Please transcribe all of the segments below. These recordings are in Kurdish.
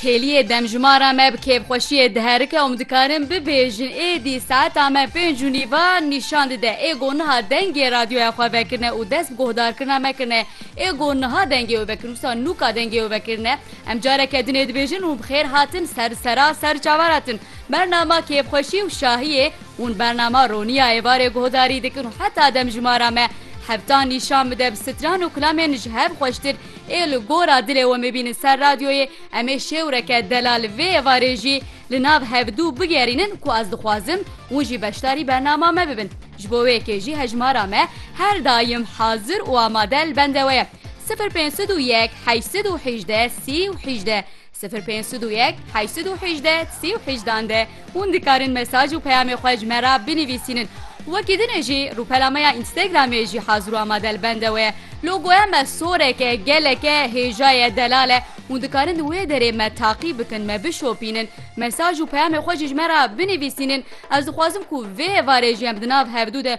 Kêliyê demjimara me bi kêfxweşiyê diherike û min dikarin bibêjin êdî saeta me pênc û nîv a nîşan dide. Ê got niha dengê radyoya xwe vekirine û dest bi guhdarkirina me kirine. Ê got niha dengê wê vekirine wisa nûka dengê wê vekirine. Em careke din ê dibêjin hûn bi xêr hatin ser sera ser çavan hatin. Bernama kêfxweşî û şahiyê hûn bernama roniya êvarê guhdarî dikin û heta demjimara me hevtan nîşan bide bi stran û kilamên ji hev xweştir Ê li gora dilê we mebînin ser radyoyê, em ê şêwreke delal vê êvarê jî li nav hevdû bigerînin ku ez dixwazim hûn jî beşdarî bernama me bibin. Ji bo wê yekê jî hejmara me her daim hazir û amade li bende we ye, sifir pênc sed û yek heşt sed û hîjdeh sî û hîjdeh. Sifir pênc sed û yek heşt sed û hejdeh sê û hejdan de hûn dikarin mesaj û peyamê xwe ji me re binivîsînin. Wekî din e jî rûpela me ya Instagramê jî hazir û amade li bende we ye. Logoya me sorek e, gelek e, hêja ye, delal e. Hûn dikarin di wê derê me taqîb bikin, me bişopînin, mesaj û peyamê xwe jî ji me re binivîsînin. Ez dixwazim ku vê hevarê jî em di nav hevdu de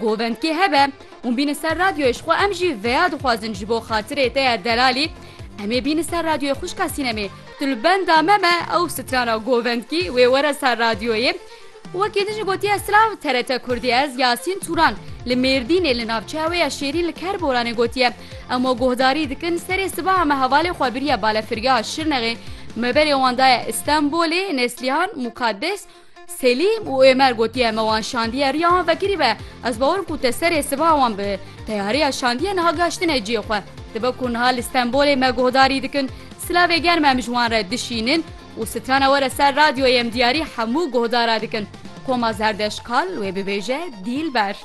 Govendkê hebe hûn bîne ser radyoyê ji xwe em jî veya dixwazin ji bo xatirê te ya delalî em ê bîne ser radyoyê xwişka sînemê tu li benda me me ew strana govendkî wê were ser radyoyê Wekî din jî gotiye silav TRT kurdî ez Yasîn Turan li Mêrdînê li navçeya wê ya Şêrîn li Kerboranê gotiye emo guhdarî dikin serê sibaha me hevalê xwe biriye balefirgeha Şirnexê me berê wan daye Îstenbolê Neslihan Mukaddes Selîm û Êmer gotiye me wan şandiye riya wan vekirî be ez bawerim ku te serê siva wan bi teyariya şandiye niha gaştine ciyê xwe dibe ku niha li Stenbolê me guhdarî dikin silavê germ em ji wan re dişînin û strana were ser radyoyê em diyarî hemû guhdara dikin Koma Zerdeşkal wê bibêje Dîlber.